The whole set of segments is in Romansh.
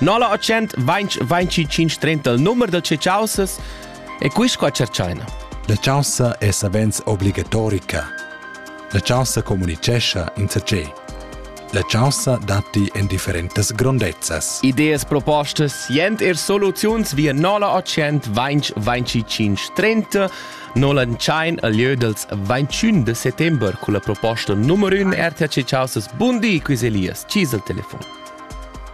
0825 il numer del ceciausas e quis qua cerchaina. La chaussa è savens obligatorica. La chaussa comunicescha in sacé. La chaussa datti en differentas grondezzas. Ideas propostas, jent er soluziuns via 0825 30 Nolentschein al lieu dels 21 de settembre con la proposta numero 1 RTC Chaussas Bundi Quiz Elias, Cis al telefon.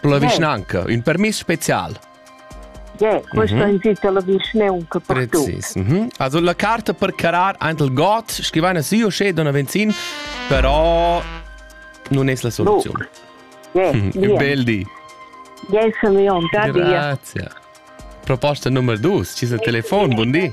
Per la vischnanca, ün permiss special. Yeah, questo mm -hmm. invita la vischnaunca per Precis. Mm -hmm. Also la carta per carar aint il got, scrivana sì o sce donna Venzin, però non es la soluzione. No. Yeah, mm -hmm. Bel di. Yes, mio, da Grazie. Proposta numero 2, ci sta il telefono, buon di.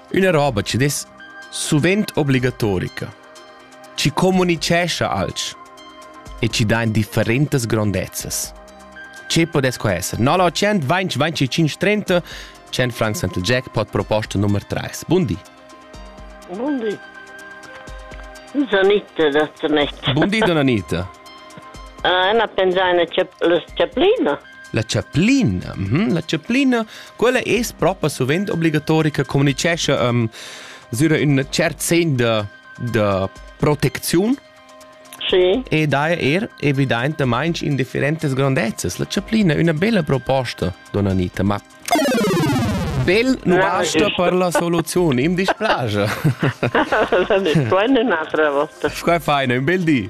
Üna roba chi dess suvent obligatorica, chi comunicescha alch e chi dà in differentas grondezzas. Che podess co esser? 0800 20 25 30 100 francs Central Jackpot proposta nummer 3. Bundi. Bundi. Donita dat me. Bundi Donita. Ah, uh, ena pensai na chaplina. La chaplina, mm -hmm, la chaplina, quella es propa suvent obligatorica, communicescha um, sura ün cert sen da, da protecziun sì. e daja er evidentamaing in differentas grandezzas. La chaplina è una bella proposta, donna Anita, ma bel nu basta per la soluzione, im dispiace. L'ho detto, è un'altra volta. Scusa, feina, un bel di.